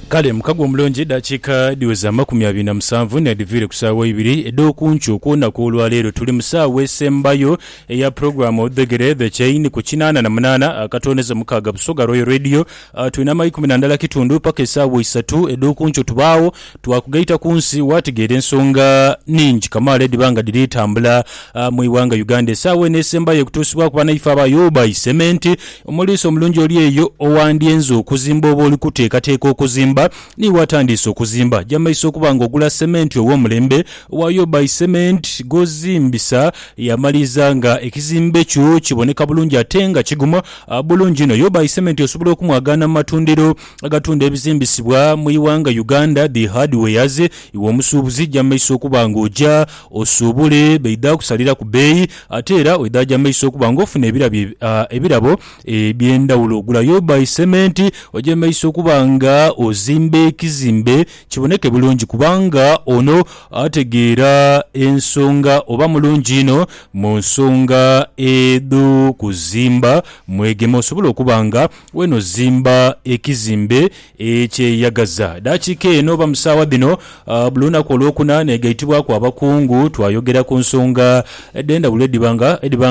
Kale mukago omulungi edhakiika edhiweza amakumi abiri na musanvu n'edhiviire ku saagho ibiri edh'okunkyo okw'olunaku olwaleero. Tuli mu saagho esembayo eya pulogulaamu Odhegere The Chain ku kinaana na munaana akatooneza mukaaga Busoga Royal Radio. Twina amaikumi na ndala kitundu paka esaagho isatu edh'okunkyo tubaagho. Twakugaita ku nsi waategeera ensonga ningi kamaala edhiba nga dhiri tambula mu ighanga Uganda esaawa eno esembayo okutuusibwaku banaife aba Yuba isementi. Omuliisa omulungi oli eyo owandyenze okuzimba oba oli kuteekateeka okuzimba ni waatandiise okuzimba. Aja maiso okuba nga ogula sementi ow'omulembe owa Yuba isementi gw'ozimbisa yaamaliza nga ekizimbe kyo kiboneka bulungi ate nga kiguma bulungi inho. Yuba isementi osobola okumwagaana mu matundiro agatunda ebizimbisibwa mu ighanga Uganda dhi hardwares iwe omusuubuzi ja mumaiso okuba nga oja osuubule baidha kusalira ku beeyi ate era oidha ja mumaiso okuba nga ofuna ebirabo eby'endhawulo. Gulayo by Cement oje mu maiso okuba nga ozimba ekizimbe kiboneke bulungi kubanga ono ategeera ensonga oba mulungi inho mu nsonga edh'okuzimba mwegema osobole okuba nga Wenozimba ekizimbe ekyeyagaza. Dakiika eno oba mu saawa dhino buli lunaku Olwokuna negaitibwaku abakungu twayogera ku nsonga edhendhawulo edhiba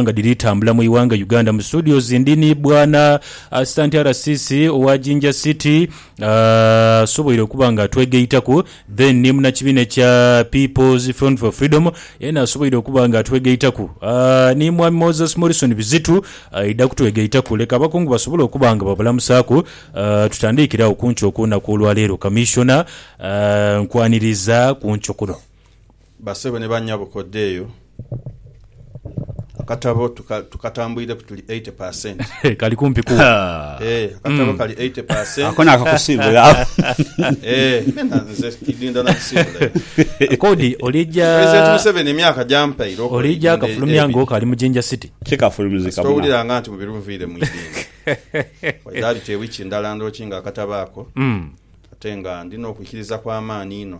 nga dhiri tambula mu ighanga Uganda. Mu studios ndi ni Bwana Asistant RCC owa Jinja City asoboire okuba nga atwegaitaku. Then ni munakibiina ekya People's Front for Freedom yena asoboire okuba nga atwegaitaku. Aah ni Mwami Moses Morrison Bizitu aidha kutwegaitaku. Leka abakungu basobole okuba nga babulamusaaku. Aah tutandiikire agho ku nkyo ku lunaku olwaleero. Kamissiona, aah nkwaniriza ku nkyo kuno. Basebo ni banyabo kodheeyo akatabo tukatambwireku tuli eighty percent. Kali kumpi ku. Eeh akatabo kali eighty percent. Ako nakakusiibula ako. Eeh nena nze kidindha nakisiibula ekyo. Kodi olija. President Museveni emyaka gyampaire okola eidindho elyo. Olija kafulumya nga okali mu Jinja City. Kikafulumizika muna. Kasita owulira nga nti mubiri nviire mu idindho. Waidha bite wiki ndala ndhoki nga akatabo ako ate nga ndina okwikiriza kwamaani inho.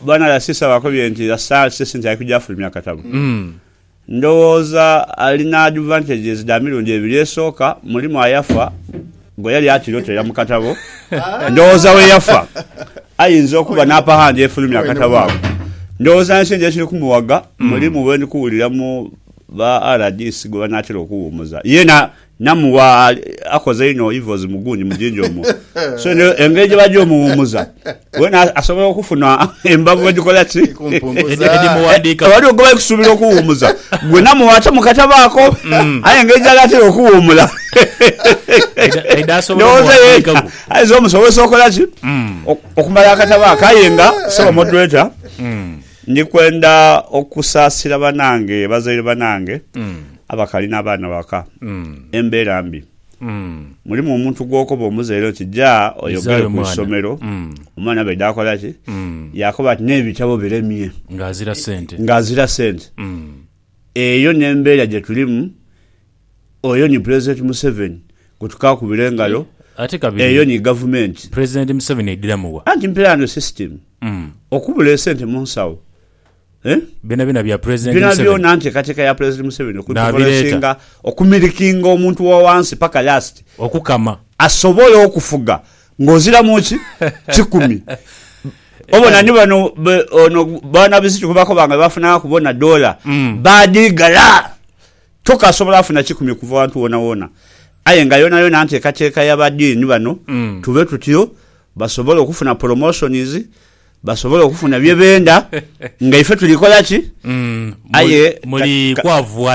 Bwana Lasisa bakobye nti Lasal si sente yaikuja afulumya katabo. Ndowooza alina advantages dha mirundi ebiri. Esooka, mulimu ayafa gwe yali atiroterera mu katabo. Ndowooza bwe yafa ayinza okuba n'apa handi efulumya akatabo ako. Ndowooza ni sente ekiri kumuwaga, mulimu bwe ndi kuwuliramu ba rdc gwe banaatera okuwumuza. Ye na. Namu wa akoze inho ivozi mu gundi mujinja omwo. So eno engeri gye bagya omuwumuza wena asobola okufuna embavu edikola ki? Edimughandika. Eh, waliwo gwe bali kusubira okuwumuza. Gwe namu wa ate mukatabaako. Mm. Aye engeri gyali atera okuwumula. Eda asobola omuwandika. Ayiza omusobozesa okola ki? Mm. Okumala akatabaako aye nga sebo moderator. Mm. Ndi kwenda okusaasira banange bazaire banange abakali n'abaana ghaka. Embeera mbi. Mulimu omuntu gw'okoba omuzaire oti ja oyogere ku isomero, omwana bw'aidha akola ki? Yaakoba ati n'ebitabo biremye. Ng'azira sente. Ng'azira sente. Eyo n'embeera gye tulimu Oyo ni Pulezidenti Museveni gwe tukaakubira engalo. Eyo ni gavumenti. Pulezidenti Museveni aidhiramu wa? Anti mpera eno sisitimu. Okubula esente mu nsawo. Byonabyona bya Pulezidenti Museveni. Byonabyona nteekateeka ya Pulezidenti Museveni okuinfuluensinga, okumilikinga omuntu wa wansi paka lasiti. Okukama. Asobole okufuga ng'oziramu ki? Kikumi. Obona ni bano ono Bwana Bizito gwe bakoba nga be bafunaghaku bona doola, baadhiigala. Tokasobola funa kikumi kuva wantu wonawona aye nga yonayona ntekateka ya ba dean bano tube tutyo basobola okufuna promotions basobola okufuna byebenda nga ife tuli kola ki aye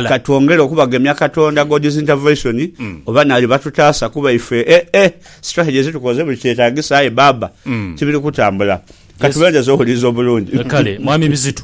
katwongere okubagemya katonda God's intervention oba nali batutasa kuba ife eh eh strategy zitukoze buli kyetagisa aye baba tibiri kutambula katubendeze owuliza obulungi. Kale mwami Bizitu.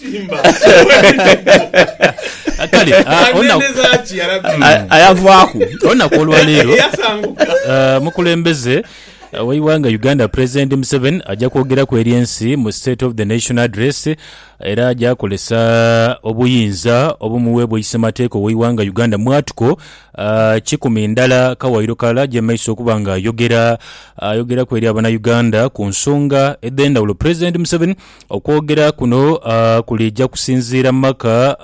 Simba. Ah, kale ah, olunaku- Aneneza ki yarabi? A- ayavaaku olunaku olwaleero Eyasanguka. Uh, mukulembeze uh, w'eighanga uganda president museveni ajja kwogeraku eri ensi mu state of the nation address era ajja akozesa obuyinza obumuweebwa isemateeka ow'eighanga uganda mwatuko uh, kikumi ndala kawairo kalala ajje mu maiso okuba nga ayogera ayogeraku eri abanauganda ku nsonga edh'endhawulo president museveni Okwogera kuno kulija kusinziira mu maka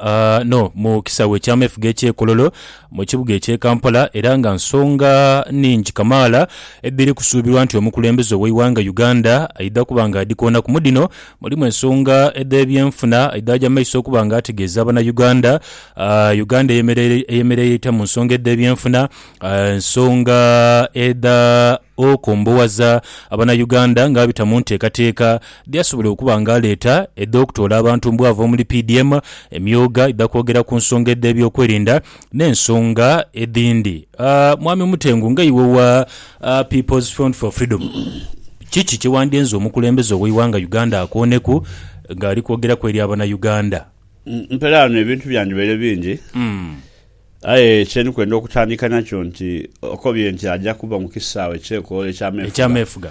no mu kisaawe eky'ameefuga eky'eKololo mu kibuga eky'e Kampala era nga nsonga nhingi kamaala edhiri kusuubirwa nti omukulembeze ow'eighanga Uganda aidha kuba nga adhikoonaku. Mu dhino mulimu ensonga edh'ebyenfuna aidhaaja maiso okuba nga ategeeza Banauganda Uganda eyemereire etya mu nsonga edh'ebyenfuna, ensonga edha okombowaza Banauganda ng'abita mu nteekateeka Byasobola okuba nga aleeta edh'okutoola abantu mbu ava omuli PDM, emyooga idha kwogera ku nsonga edh'ebyokwerinda n'ensonga edhindi. Mwami Mutengu, nga iwe owa People's Front for Freedom, kiki kye wandyenze omukulembeze ow'eighanga Uganda akooneku ng'ali kwogeraku eri Abanauganda? Mperaano ebintu byandibaire bingi. Aye kye ndi kwenda okutandika nakyo nti okobye nti aja kuba mu kisaawe eky'ekoolo eky'ameefuga.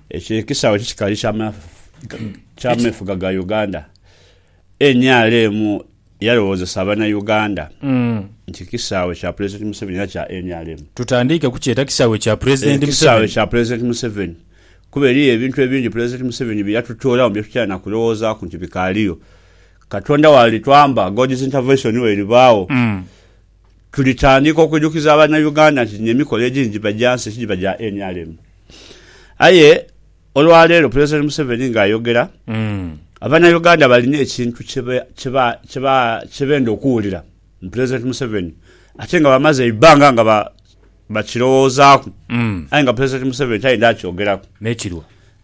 Ekyo ekisaawe kikali ky'ameefuga ga Uganda. Nrm yalowoozesa Abanauganda nti kisaawe kya Pulezidenti Museveni era kya nrm. Tutandiike kukyeta kisaawe kya Pulezidenti Museveni? Kisaawe kya Pulezidenti Museveni kuba eriyo ebintu ebingi Pulezidenti Museveni bye yatutoolamu bye tutayinza kulowoozaaku nti bikaaliyo. Katonda w'alitwamba, God's Intervention w'eribaagho, tulitandiika okwidhukiza Abanauganda nti dhino emikolo egindhi gibagya nsi, tigiba gya nrm. Aye olwaleero Pulezidenti Museveni ng'ayogera, Abanauganda balina ekintu kye benda okuwulira mu Pulezidenti Museveni ate nga bamaze eibbanga nga bakirowoozaaku aye nga Pulezidenti Museveni tayenda akyogeraku.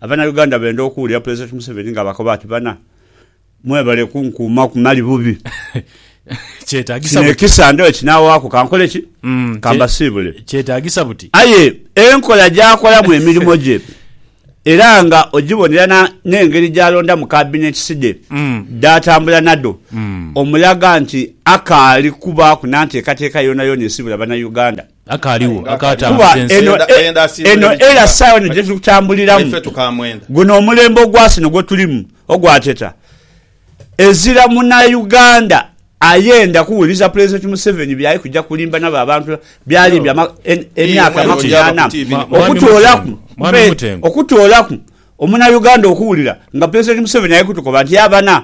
Abanauganda benda okuwulira Pulezidenti Museveni ng'abakoba ati, Bana, Mwebale kunkuuma ku mali bubi. Kino ekisa ndooyo kinaawaaku kankole ki? Ka mbasiibule. Kyetaagisa buti? Aye enkola gy'akolamu emirimo gye era nga ogibonera n'engeri gy'alondamu kabineti side dh'atambula nadho, omulaga nti akaali kubaaku na nteekateeka yoonayoona esiibula Bannayuganda. Akaaligho akaatambula ensi. Kuba eno, eno, eno era sawa eno gyetuli kutambuliramu. Guno omulembe ogwasino gwetulimu ogwateta ezira muna Uganda ayenda kuwuliza Pulezidenti Museveni byali kuja kulimba nabo abantu byalimbye emyaka amakumi ana okutoolaku, mpe okutoolaku omuna Uganda okuwulira nga Pulezidenti Museveni ali kutukoba nti abana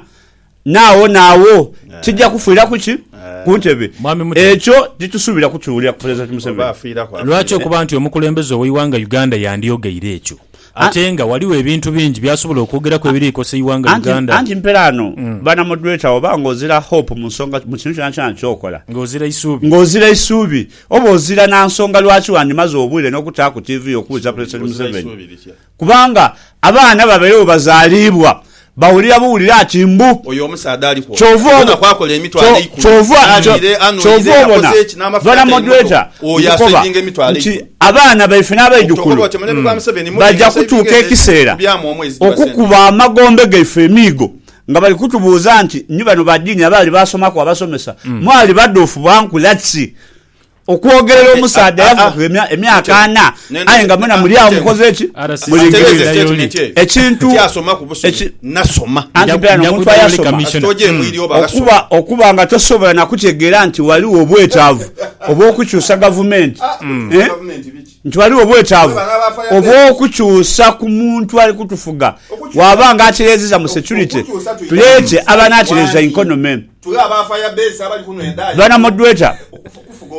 Naagho naagho kija kufiiraku ki? Ku ntebe. Mwami Mutale. Ekyo titusuubira kukiwulira ku Pulezidenti Oba Museveni. afiiraku Lwaki afiire. okuba nti omukulembeze ow'eighanga Uganda yandyogeire ekyo ate nga ghaligho ebintu bingi by'asobola okwogeraku ebiri kukosa eighanga Anti, Uganda anti mpela ano bana moderator oba nga ozira hope mu nsonga mu kintu kyonakyona kyokola. nga ozira eisuubi? Nga ozira eisuubi oba ozira na nsonga lwaki wandimaze obwire n'okutaaku tiivi yo okuwuliza Pulezidenti Ozira Museveni. isuubi litya? Kubanga abaana ababaire bwebazaalibwa bawulira buwulira ati mbu. Oyo omusaadha ali kwoka Kyova obona. yona kwakola emitwalo Kyo, eikumi, kyova, kyo, aliire, kyova anwire, obona, akoze ki, n'amafuta Bwana atali Moderator, muto, oyo nkukoba asevinga emitwalo nti eikumi. abaana baife Okutokoba n'abaidhukulu oti omulembe gwa Museveni muli baja nga saving kutuuka ezo ezimu ekiseera zikubyamu omwezi dhiba sente. okukuba amagombe gaife emiigo nga bali kutubuuza nti, Ni bano ba diini abaali baasomaku abasomesa? Mwali badhuufu bwa nkula ki? Okwogerera omusaadha eyafuuka emyaka ana aye nga mwena muli agho mukoze ki? Mulingirire. Ekintu. Anti beera n'omuntu ayasoma. Okuba, okuba nga tosobola na kutegeera nti ghaligho obwetaavu obw'okukyusa gavumenti, nti ghaligho obwetaavu obw'okukyusa ku muntu ali kutufuga, bwaba nga atereezezza mu securite, tuleete aba anatereeza inkonomi. Bwana moderator,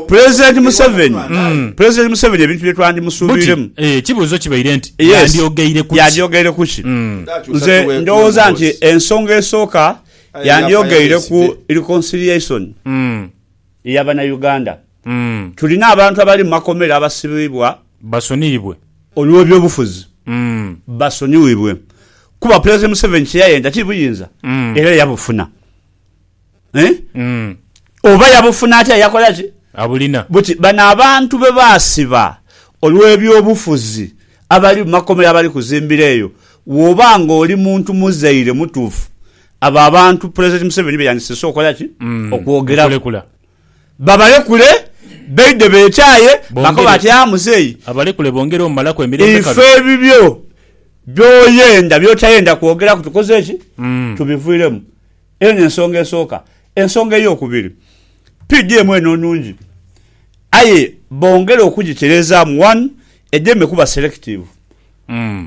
President Museveni mm. President Museveni ebintu bye twandimusuubiremu. Eh, ekibuuzo kibaire nti yandyogeire kuki? Yandyogeire kuki? Mm. Nze ndowooza nti ensonga esooka yandyogeire ku reconciliation mm. eyabana Uganda. Tulina abantu abali mu makomera abasibibwa basoniyibwe. Olw'ebyobufuzi basoniyibwe kuba Pulezidenti Museveni kye yayenda ti buyinza era yabufuna. Oba yabufuna atya yakola ki? Abulina. Buti bano abantu be baasiba olw'ebyobufuzi abali mu makomera abali kuzimbira eyo, bw'oba ng'oli muntu muzaire mutuufu, abo abantu Pulezidenti Museveni be yandisiise okola ki? Okwogeraku. Babalekule baidhe beekyaye. Bakoba bati, Aa muzei. Abalekule bongere omumalaku emirembe kale. Ife ebibyo by'oyenda, by'otayenda kwogeraku tukoze ki? Tubiviiremu. Eno y'ensonga esooka. Ensonga ey'okubiri, PDM eno nnungi aye bongere okugitereezaamu. One, edeme kuba selective.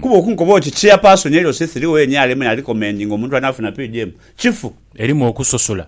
Kuba okunkoba oti Chairperson LC3 owe nrm n'arecommendinga omuntu anaafuna PDM, kifu. Erimu okusosola.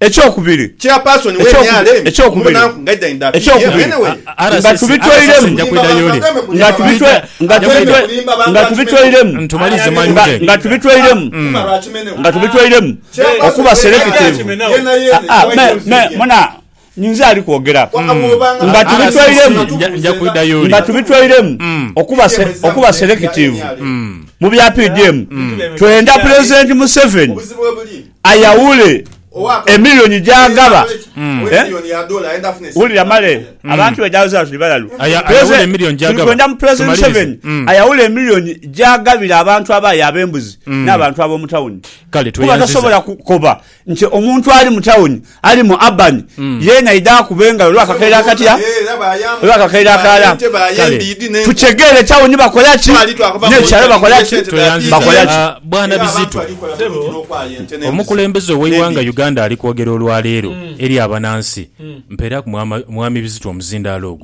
Ekyokubiri, ekyokubiri, ekyokubiri, nga tubitoiremu, nga tubitwe, nga tubitwe, nga tubitoiremu, nga tubitoiremu, nga tubitoiremu okuba selekitiivu, aa, me, me, muna, nyinza ali kwogera, nga tubitoiremu, nga tubitoiremu okuba, okuba selekitiivu mu bya PDM, twenda Pulezidenti Museveni ayawule emiliyoni gy'agaba. Wulira male, abantu baidha awo zira tuli balalu. Tuli kwenda mu Pulezidenti Museveni ayawule emiliyoni gy'agabira abantu abaayi ab'embuzi n'abantu ab'omu tawuni. Kuba tasobola kukoba nti omuntu ali mu tawuni Ali mu Abani, ye naidha akuba engalo olwa kakeire akatya? Olwa kakeire akalala? Kale tutegeere ekyagho ni bakola ki, n'ekirala bakola ki? Bakola ki? Bwana Bizito, omukulembeze ow'eighanga Uganda ali kwogera olwaleero eri abanansi. Mpeeraku Mwami Bizito omuzindaalo ogwo.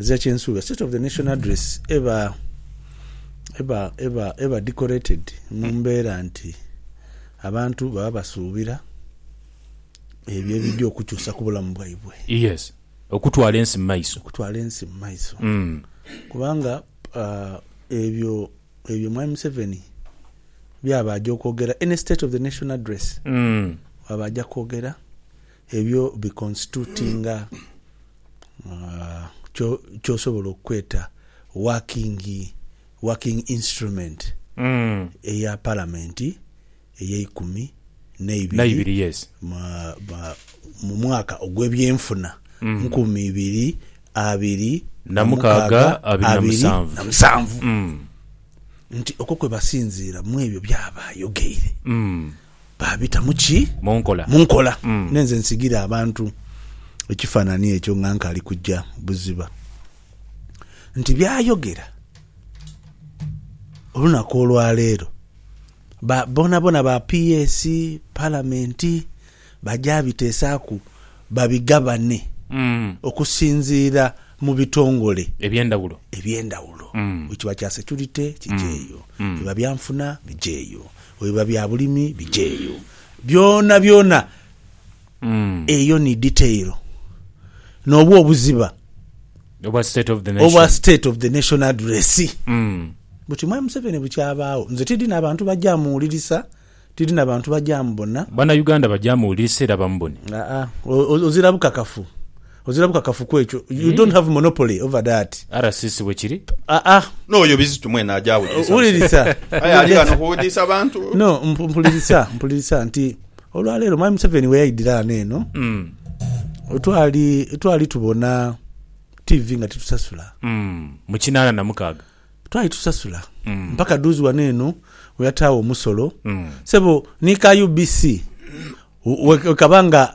Ezira kye nsuubira State of the Nation Address eba, eba, eba, eba decorated mu mbeera nti abantu baba basuubira ebyo ebidhi okukyusa ku bulamu bwaibwe. Yes. Okutwala ensi mu maiso. Okutwala ensi mu maiso. Kubanga ebyo, ebyo Mwami Museveni byaba aja okwogera, any State of the Nation Address, bwaba aja kwogera, Ebyo bi constitutinga ky'osobola okweta working working instrument eya Palamenti ey'eikumi n'eibiri mu mwaka ogw'ebyenfuna nkumi ibiri abiri na mukaaga abiri na musanvu nti okwo kwe basinziira mw'ebyo by'aba ayogeire. baabita mu ki? Mu nkola. Mu nkola. Nenze nsigire abantu ekifaanani ekyo nga nkali kuja buziba nti by'ayogera olunaku olwa leero ba boonaboona ba PS, Palamenti baja biteesaaku babigabane okusinziira mu bitongole. Eby'endhawulo. Eby'endhawulo. Bwe kiba kya securite, kije eyo. Bwe biba byanfuna, bije eyo. Bwe biba bya bulimi bijeeyo. Byonabyona eyo ni detail. N'obwo obuziba Obwa state of the nation. obwa state of the nation address. Buti Mwami Museveni bukyabaagho. Nze tidhi na bantu baja muwulirisa, tidhi na bantu baja mubona. Bana Uganda baja muwulirisa era bamubone. Aa, o- o- ozira bukakafu. Ozira bukakafu ku ekyo. You don't have monopoly over that. RCC bwe kiri. Ah, ah. N'oyo Bizitu mwene aja awulirisa. Wulirisa. Aye ali ghano kuwudiisa abantu. No, mpu- mpulirisa, mpulirisa nti olwaleero Mwami Museveni we yaidhira ghano eno, Mm. twali, twali tubona TV nga titusasula. Mm. Mu kinaana na mukaaga. Twali tusasula. Mm. Mpaka duuzi wano eno we yataawo omusolo. Mm. Sebo, ni ka UBC, we- we- wekaba nga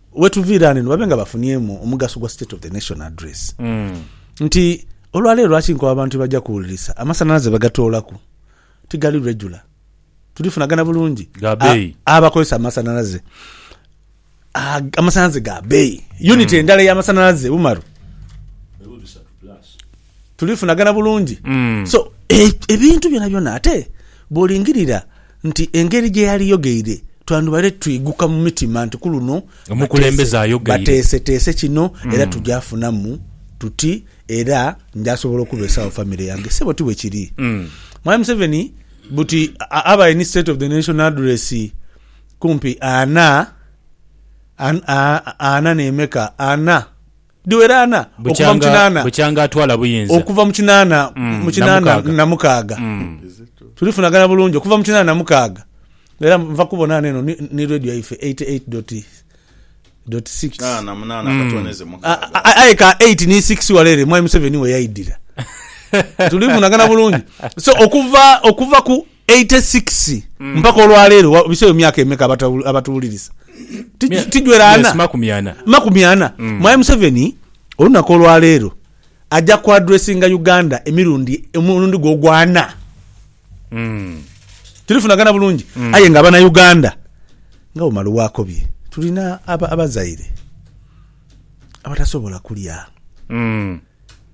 Wetuviira ghano eno babe nga bafuniemu omugaso gwa State of the Nation Address nti olwaleero lwaki nkoba abantu byebaja kuwulirisa amasanhalaze bwegatoolaku tigali regular, tulifunagana bulungi? Ga beeyi. Abakozesa amasanhalaze ag amasanhalaze ga beeyi, unit endala ey'amasanhalaze Umaru. tulifunagana bulungi. So, ebintu byonabyona ate bw'olingirira nti engeri gye yaliyogeire twandibale twiguka mu mitima nti ku luno bateeseteese kino era tuja funamu tuti era nja sobola okubeesawo famire yange. Ssebo ti bwe kiri? Mwami Museveni buti abaire ni State of the Nation Address kumpi ana, ana n'emeka? Ana. Dhiweraana okuva mu kinaana. Bukyanga atwala buyinza. Okuva mu kinaana mu kinaana na mukaaga. Tulifunagana bulungi okuva mu kinaana na mukaaga. Era nva kubona ghano eno ni radio yaife 88 doti doti 6. Kinaana munaana akatwoneze mukaaga. Aye ka 8 ni 6 wale ere Mwami Museveni we yaidhira. Tulifunagana bulungi. So okuva okuva ku Eighty six mpaka olwaleero wa biseyo myaka emeka abata abatuwulirisa ti Mya- tijwera yes, ana makumi ana. makumi ana mwaye museveni olunaku olwaleero aja ku addressinga uganda emirundi omulundi gwe ogwana tulifunagana bulungi aye nga abana uganda nga bwemala wakobye tulina aba, abazaire abatasobola kulya Mm.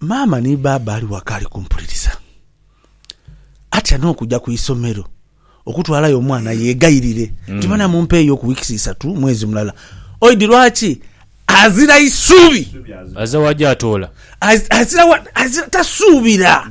Maama ni baaba ali waka ali kumpuliriza atya n'okuja ku isomero okutwalayo omwana yeegayirire nti bana mumpeeyo ku wiikisi isatu, mwezi mulala. Oidi lwaki azira isuubi? Azira wa gy'atoola? Azira wa, azira, tasuubira.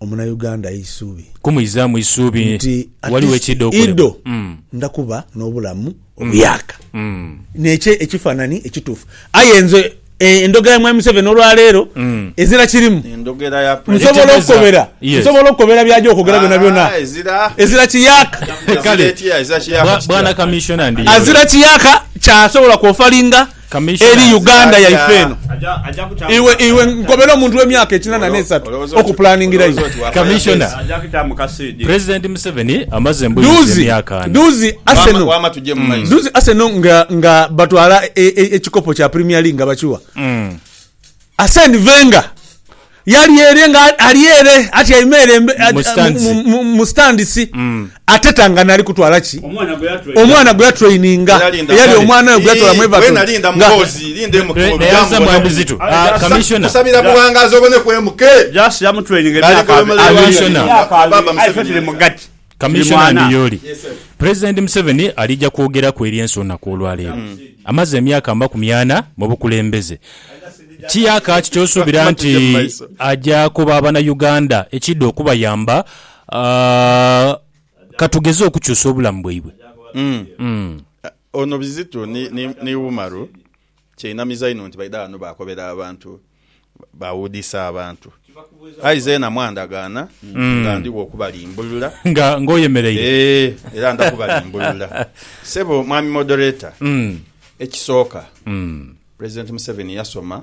Omunayuganda eisuubi. Kumuizaamu isuubi nti ghaligho ekiidha okolebwa. Nti at least idho ndha kuba n'obulamu obuyaaka. N'ekyo ekifaanani ekituufu. Aye nze endhogera ya Mwami Museveni olwa leero ezira kirimu. Endhogera ya President. Nsobola okukobera, nsobola okukobera by'aja okwogera byonabyona. Ezira kiyaaka. Kale, Bwana Kamiisona, ndiyo. Azira kiyaaka kyasobola kwofalinga Eri Uganda yaife eno. Iwe iwe nkobera omuntu we myaka ekinana ne satu oku planingira iwe. Commissioner, President Museveni amaze mbuyizi emyaka ana. Duuzi Arsenal duuzi Arsenal nga nga batwala ekikopo kya premier league nga bakiwa Arsene Wenger. Yali ere nga ali ere atyaime ere mu sitandisi ateta nga naali kutwala ki? Omwana gwe yatraininga. Eyali omwana we gwe yatwala mu Everton nga. Kamiishona Ndiyoli, Pulezidenti Museveni alija kwogeraku eri ensi olunaku olwaleero. Amaze emyaka amakumi ana mu bukulembeze. Kiyaaka ki kyosuubira nti aja koba Abanayuganda ekiidha okubayamba katugeze okukyusa obulamu bwaibwe? Ono Bizito ni Umaru Kyenamiza inho nti baidha ghano baakobera abantu, baawuudisa abantu. Aye zeena mwandagaana nga ndigho okubalimbulula. Nga, nga oyemereire. Ee, era nda kubalimbulula. Ssebo Mwami Moderator, ekisooka, Pulezidenti Museveni yasoma.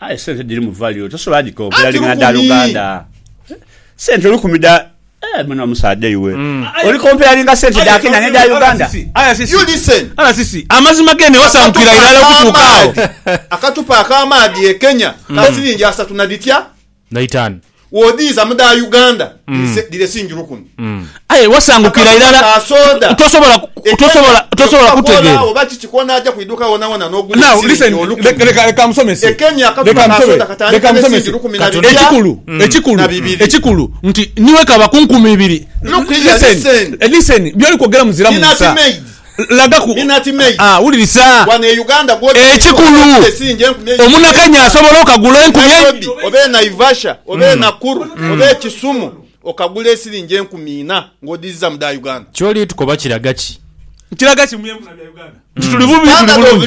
Aye sente dhirimu value tosobola dhikonkera lingana dha luganda. Sente olukumi da Eh, muna omusaadha iwe mm. oli comparinga sente dha Kenya ne dha Uganda. You listen. RCC amazima gene wasankira irala okutuuka awo. Akatupa ak'amaadhi e Kenya ka mm. siringi asatu na dhitya? Naitani. Wodhiiza mu dha Uganda dhiresinjirwa kuno. Aye wasangukira irala tosobola kutegeera. Now listen leka musomese ekikulu ekikulu ekikulu nti niwekaba ku nkumi ibiri listen listen byoli kwogera muziramu nsa. Lagaku. Aa, wulirisa. Ekikulu, omunakenya asobola okagula enkumi eibiri. Kyoli tukoba kiraga ki? Kiraga ki mu byenfuna bya Uganda nti tuli bubi, tuli bulungi?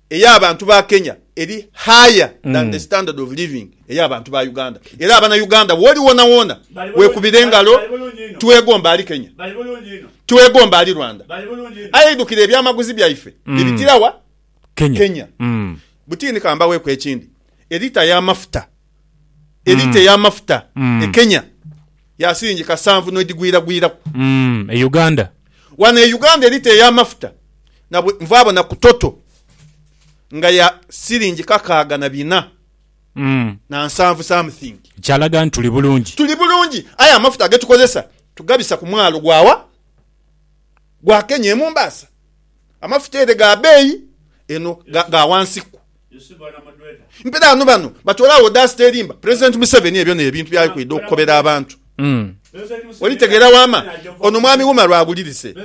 ey'abantu ba Kenya eri higher than the standard of living ey'abantu ba Uganda era abana Uganda woli wona wona wekubira engalo twegomba ali Kenya twegomba ali Rwanda aye eidhukira ebyamaguzi byaife bibitira wa? Kenya. Butini kambaweku ekindi elita y'amafuta elita ey'amafuta e Kenya ya silingi kasanvu n'edhigwiragwiraku. E Uganda. Wano e Uganda elita ey'amafuta nabwe nvaabona ku Total nga ya silingi kakaaga na bina na nsanvu something. Kyalaga nti tuli bulungi. Tuli bulungi aye amafuta ge tukozesa tugabisa ku mwalo gwa wa? Gwa Kenya e Mombasa. Amafuta ere ga beeyi, eno ga wansiku. Mpira ghano bano batoolagho odaasite erimba Pulezidenti Museveni ebyo n'ebintu byali kwidha okukobera abantu. Olitegeera wama? Ono Mwami Wumalu awulirise.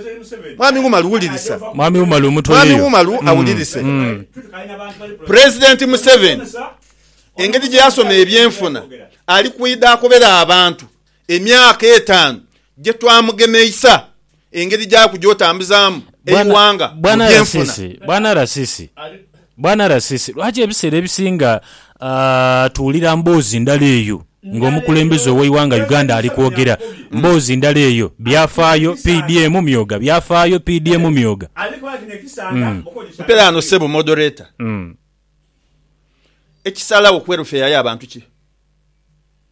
Mwami Wumalu wulirisa. Mwami Wumalu mutweleyo. Mwami Wumalu awulirise. Pulezidenti Museveni engeri gye yasoma ebyenfuna ali kwidha akobere abantu. Emyaka etaanu gye twamugemeisa engeri gy'akugya otambuzaamu eighanga mu byenfuna. Bwana RCC, lwaki ebiseera ebisinga tuwulira mboozi ndala eyo ng'omukulembeze ow'eighanga Uganda ali kwogera mboozi ndala eyo? Byafaayo PDM myooga Byafaayo PDM myooga Mperaano ssebo Moderator, ekisalagho ku welfare y'abantu ki?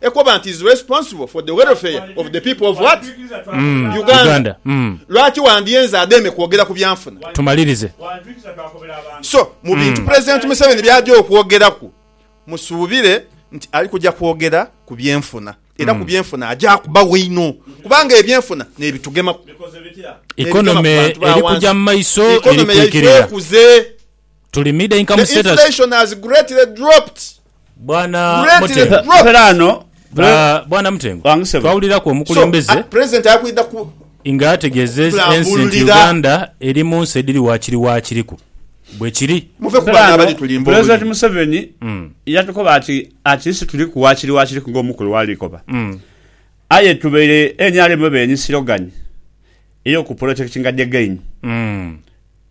Ekoba nti is responsible for the welfare of the people of what? Mm, Uganda. Uganda. Mm. Lwaki wandyenze ademe kwogera ku byanfuna? Tumalirize. So, mu bintu Mm. Pulezidenti Museveni by'aja okwogeraku, musuubire nti ali kuja kwogera ku byenfuna. Era ku Mm. byenfuna aja kubawa einho kubanga ebyenfuna n'ebitugemaku. Economy eri kuja mu maiso, eri Economy yaife kwikirira. ekuze. The inflation has greatly dropped. President ali kwidha ku. Nga ategeza ensi nti Uganda eri mu nsi ediri wakiri wakiriku. Bwekiri. Muve ku bano abali tulimba oluyi. President Museveni yatukoba ati at least tuliku wakiri wakiriku nga omukulu wali koba. Aye tubaire nrm bebeeni silogan eyoku protectinga the gain.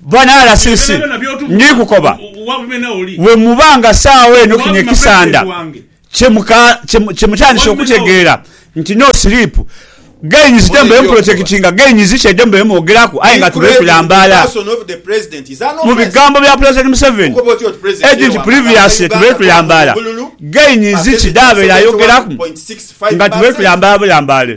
Banalasisi, ndikukoba bwe muba nga saagho eno kino ekisanda kye mutandise okutegeera nti no sleep gains them beemu protectinga gains kye them beemu ogeraku aye nga tube tulambaala mu bigambo bya Pulezidenti Museveni edi nti previously tube tulambaala gains ki dhabeera ayogeraku nga tube tulambaala bulambaale.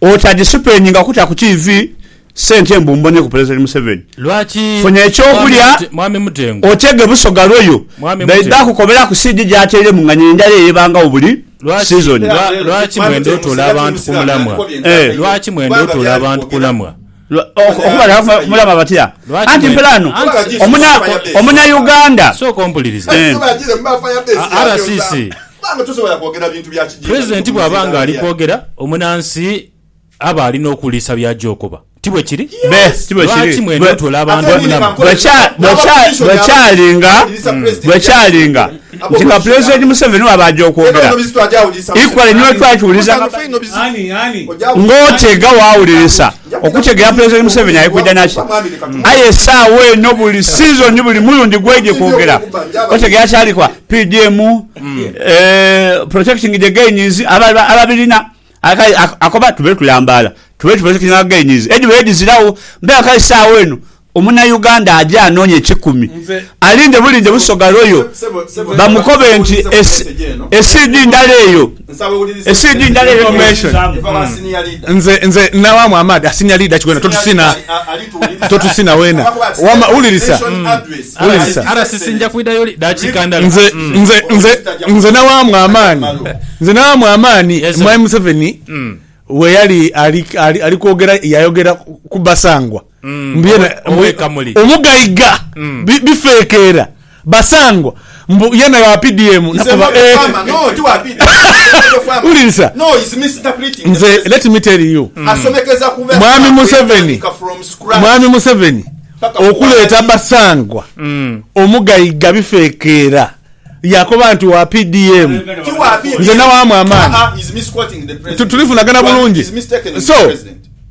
Oti adisipeninga kuta ku TV sente mbu mboneku Pulezidenti Museveni. Lwaki Funya ekyokulya Mwami Mutengu? otege busoga lwoyo. Mwami Baidha Mutengu. kukoberaku CD gyatairemu nga n'endala eyo ebangagho buli Lwaki, sizoni. lwa, lwaki mwenda otuula abantu ku mulamwa? Eh. Lwaki mwenda otuula abantu kulamwa? Mulaba batya? Anti mpela ghano Omunayuganda. Sooka ompulirize. RCC, Pulezidenti bw'aba ng'ali kwogera, omunansi aba ali n'okuwulirisa by'aja okoba. Ti bwe kiri? Lwaki mwena otoola abantu omunama? Bwe kyali nga nti nga Pulezidenti Museveni bw'aba aja okwogera, equally ni bwe twakiwuliriza ng'oteega waawulirisa okutegeera Pulezidenti Museveni ali kwidha na ki. Aye esaawa eno buli sizoni, buli mulundi gw'aidhye kwogera, otegeera kyali kwa PDM, protecting the gains, ababirina. Aye akoba tube tulambaala, tube tuprotectinga gains edhibaire dhiziragho. Mpaawo kale esaawa eno Omunayuganda aje anoonye kikumi alinde bulinde Busoga Royal bamukobe nti e CD ndala eyo, e CD ndala eyo omubuuzaamu. Nze nze nawaamu amaadhi a senior leader Kigwena totusina totusina wena wama wulirisa wulirisa RCC nja kwidha yoli dakiika ndala. Nze nze nze nze nawaamu amaani nze nawaamu amaani Mwami Museveni weyali ali ali ali kwogera yayogera ku Basangwa Mbu yena omugaiga bifekeera basangwa mbu yena wa PDM nakoba eeh wulirisa nze let me tell you mwami Museveni mwami Museveni okuleeta basangwa omugaiga bifekeera yakoba nti wa PDM nze nawaamu amaani tulifunagana bulungi so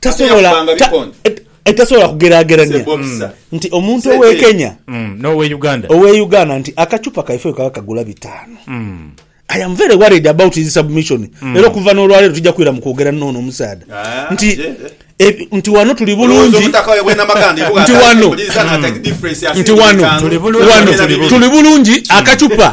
tasobola tasobola kugeragerania nti omuntu owe Kenya mm, nowe Uganda owe Uganda nti akachupa kaife kaba kagula bitano mm. I am very worried about his submission mm. era okuva n'olwaleero tujja kwira mu kwogera noono omusaadha ah, nti e, nti wano tuli bulungi nti wano nti wano tuli bulungi akachupa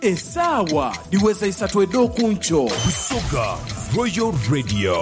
Esaawa dhiweza isatu edh'oku nkyo. Busoga Royal Radio.